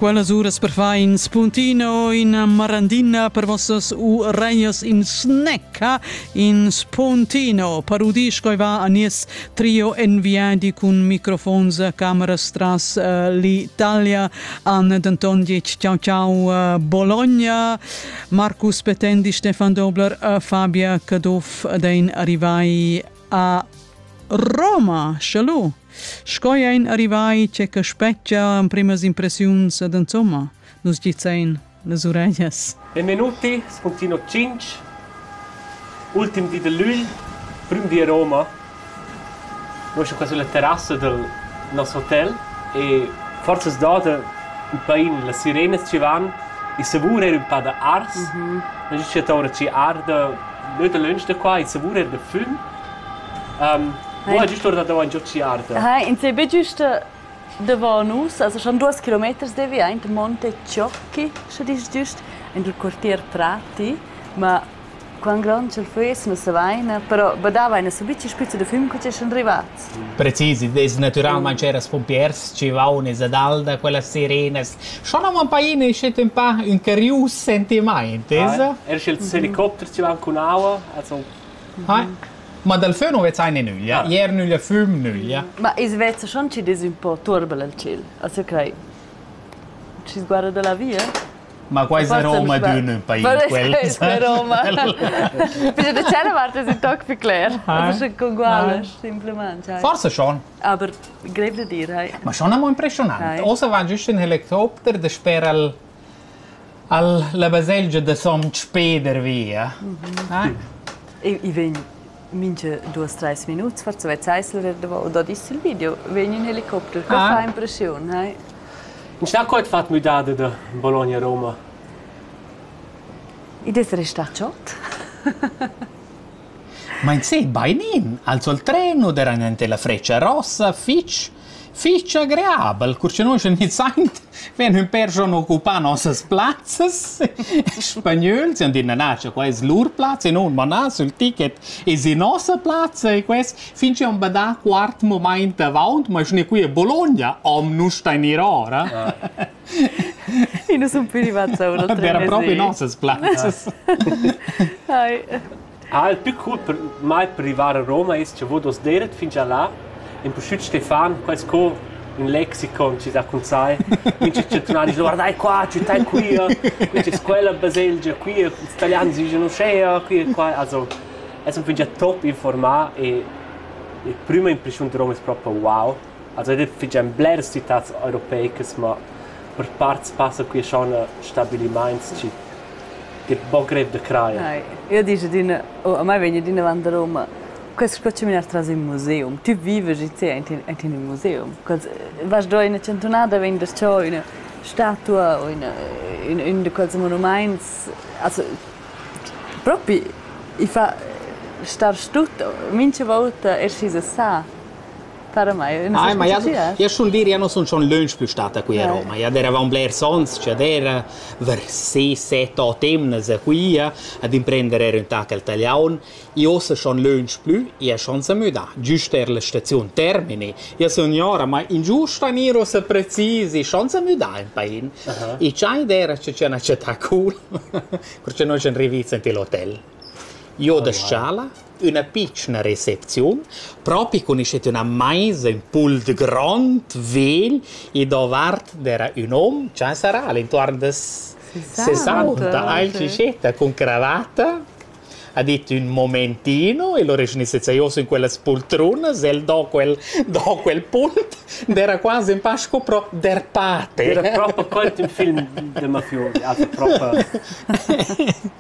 Quellas uras perfin spuntino in marandina per vossas u reias in snecca in spuntino parudis coi va a nies trio en viadi cun microfons cameras tras uh, l'Italia an denton dic ciao ciao uh, Bologna Marcus Petendi Stefan Dobler uh, Fabia Caduff dein arrivai a Roma. Shalom! Sco ein arrivai che che spetgia emprimas impressiuns ed insomma, nus gizzein las uregnas. En minuti spuntino 5 ultim di dell'Ügl, prim di a Roma. Noi siamo qua sulla terrassa del nostro hotel e forse sdota un pain las sirenes ci van il savur era un po' da ars. Mm -hmm. La giusta ora ci arda, neu da lunch da qua, il savur era da füm. Mo hai giust orda davant giò Siarta. Ha, ins ei be giust davon nus, also schon duas kilometers devi aint Monte Ciocchi, sche dis giust, in il quartier Prati, ma quant grond ch'el fuss, nus savaina, però badavaina subit che spizza da füm che ci sun rivats. Precis, id es natüralmaing ceras pumpiers chi vaun esa dal da quellas sirenas. Schon am paina schet ün pa ün carius sentimaint, esa? Er sch'ils helicopters ci van cun aua, also Ma dal fön nu vezain in nüglia. Ier nüglia füm, nüglia. Ma i's veza schon chi'd es ün po turbel al tschel, as crai. Schi's guarda da la via. Ma quai es la Roma d'ün país quel. Quel es la Roma. Ficha da cella vart es ün toc più cler. Sche congualas simplesmente. Forse schon. Aber grev da dir, hai. Ma schon amo impressionant. Ossa va giüst ün helicopter da sper al Alla baselgia da Sontg Peder via. I i vegn mincha duos trais minuts forsa vezzais lura davo dad ist il video, vegn ün helicopter. Co fa impreschiun, hai? Šta co het fat müdade da Bologna Roma? Id es restà chod. Ma in sé bainin, alzo il treno, deran ente la freccia rossa, fich. Fich agreabel, cur cha nus iniziaint vegn ün pêr schon occupà nossas plazzas spagnöls, chi'han dit na na, cha quai es lur plazza e nun, ma na, sül ticket es in nossa plazza e quest fin chi am bada quart mumaint avaunt, ma sgne qui a Bologna am nu stainirò ora. I nu sun più rivats a uno tre mesi. Però proprio nossas plazzas. Hai. Ha el tü cur mai privà a Roma e's chavò duos d'eira fingià là? Empustüt Stefan, quai sco ün lexicon chi dà cun sai. Mincha cha tunan disch guardai qua, tü tai quia, quist es quella baselgia qui, ils italians dischan uschea, qui e qua. Also es ün fingià top informà e la prüma impreschiun da Roma es propa wow. Els ein era fetg en bleras citads europeicas, mo per parts passa quei schon a stabiliments chi che ein buca grev da crair. Ai, io dici adina, oh, a mai vegn adina avant a Roma, quest qua ci menar tras in museum. Ti vives in te in in museum. Quels vas do ina centunada vegn da cho ina statua o ina in in de quels monumaints. Also propi i fa star stut mincha volta esci sa. Parmai, ah, ma ja, ja schon dir, ja non son schon lunch più stata qui a Roma, ja eravamo blers ons, cioè era ver 6-7-8 emnas a qui ad imprendere era un tac al taliaun, e ossa schon lunch più, ja schon sa müda, giusto er la stazione termini, ja signora, ma in giusta niro se precisi, schon sa müda in pain, uh -huh. e c'hai era c'è una città cool, perché noi ci arriviamo in l'hotel. Io da sciala, üna pitschna recepziun, propi cun üschet üna maisa, ün pult grond, vegl e davart d'eira ün hom cha sarà al intuorn da sesanta alcicetta cun cravatta ha dit ün momentino e l'ho reschnisse zaioso in quellas poltrunas e el do quel do quel punt ed era quasi un pa sco pro der pate. Era proper quel il film de mafiose, also proper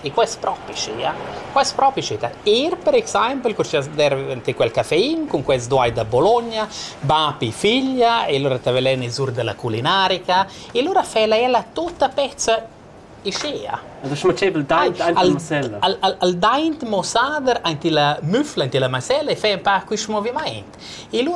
E quai es propi schia. Quai es propi schia da eir per exaimpel cur chi as derva dvanté quel caffein cun quels doai da Bologna, bapi figlia e lura t'avelen ais our da la culinarica e lura fela ella tuta pezza ischea. Ün schmütschebel daint aint la masella. Al al al daint mosader aint illa müfla, aint illa masella e fe ün pa quist movimaint. E lura